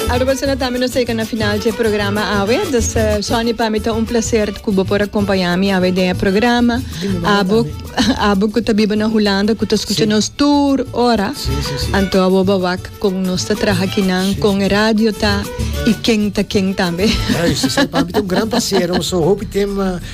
Alor persona tambe nos llega na final dje programa awe. Dus eh, Sonny pa mi ta un placer ku bo por acompaña mi awe den e programa. Abo abo ku ta biba na Holanda ku ta escucha nos tur ora. Sí, sí, sí. Anto abo ba wak kon nos ta traha kinan kon e radio ta i ken ta ken tambe. Juist, so para mim tem um grande prazer, um so hopi tem eh,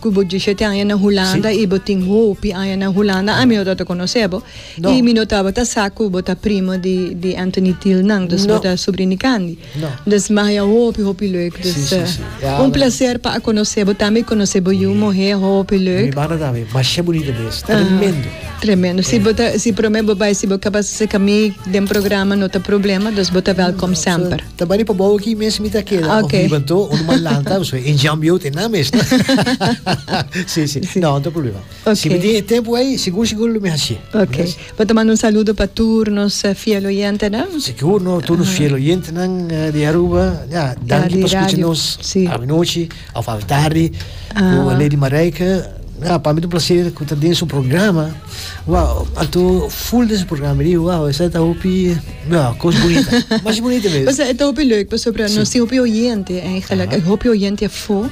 Ku bo dishete aña na Hulanda i bo tin hopi aña na Hulanda, ami no tabata konosé bo i mi no tabata sa ku bo ta primo di Anthony Thiel nan. Dus bo ta subrin di Candy. Dus mahia hopi hopi lèk. Dus un plaser pa a konosé bo tambe i konosé bo yu muhé hopi lèk. Mi mana tambe masha bunita mi es. Tremendo. Tremendo. Si bo ta si promé bo bai si bo ka basa seka mi den programa no ta problema, dus bo ta wèlkòm semper. Ta bani pa bou aki mes mi ta keda. Ah, okay. Of mi ban to, un man lanta, so en jam yo te na mes. no? sí, sí, Sí. No, no te problema. Okay. Si mi tin e tempo ahí, seguro, seguro lo mi haci. Ok. Yes. Pa ta manda un saludo pa tur nos eh, fiel oyentenan. Seguro, no, todos los fieles oyentes nan, eh, de Aruba, ya, Ja, dank di di por escuchar radio. nos Sí. a noche, of a tarde, Ah. o Lady Marijke. Ja, para mí es un placer que está en su programa. Wao a tu full des programa mi di wao esa ta hopi wao cos bonita mas bonita mes. O sea, e ta hopi leuk pasobra nos tin hopi oyente en e gelijk e hopi oyente afo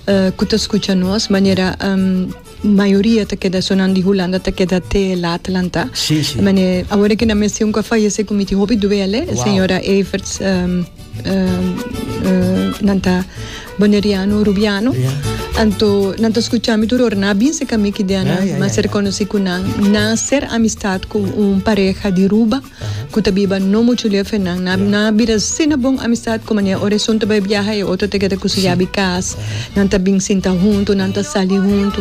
eh, ku ta skucha nos manera em, mayoria ta keda so nan di Hulanda ta keda te lat lanta. Sí, sí. Mane awor e ke nan mes tin ku a fayese ku mi tin hopi duele, Wow. señora Everts em, nan ta boneriano rubiano anto nan ta escucha mi turor na bin se kami ki diana ma ser conoci cu nan na ser amistad cu un pareja di ruba cu ta biba no mucho lef e nan na bira asina bon amistad cu mane ora esun ta bai biaha e otro ta keda cu su yabi cas nan ta bin sinta hunto nan ta sali hunto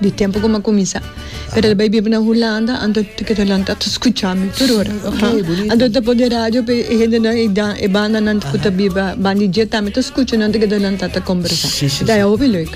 Di tempo cu m'a cuminsa. Pero el bai biba na Hulanda, anto e ta kidonan ta scucha mi tur ora. Anto e ta pon den radio pa e hendenan, e bandanan cu ta biba ban di dje tambe ta scucha nan ta kido nan ta ta combersa. E ta hopi leuk.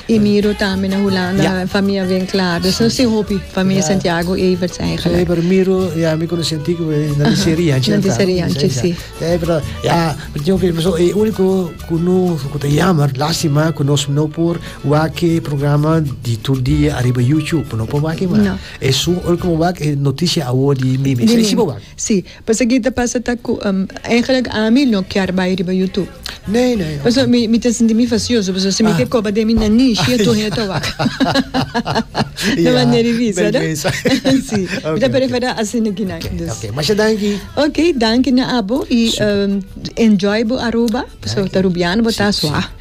I Miro tambe na Hulanda, famia bien clara. Nos ta sin hopi, famia Santiago, Everts eigenlijk. Ei, pero Miro i ami conoci antic, nan di serie anchi. Nan di serie anchi, si. Ei, pero ja, mi tin hopi, e unico cu no, cu ta jammer, lastima cu nos no por. Wak e programa di tur dia ariba YouTube, por no por wak e mas. No. Esun ora ku bo wak e noticia awor di Mimi. Esei si bo wak. Si, pasobra ta pasa ta ku eigenlijk ami no kier bai riba YouTube. Nee, nee. Pasobra mi mi ta sinti mi facioso, pasobra si mi ke koba den mi na nishi e tur hende ta wak. Na manera di bisa, no? Bèlbèsa. Si. Mi ta preferá asina ki nan. Okay, okay. Masha danki. Okay, danki na abo i enjoy bo Aruba, pasobra ta Rubiano, bo ta swa.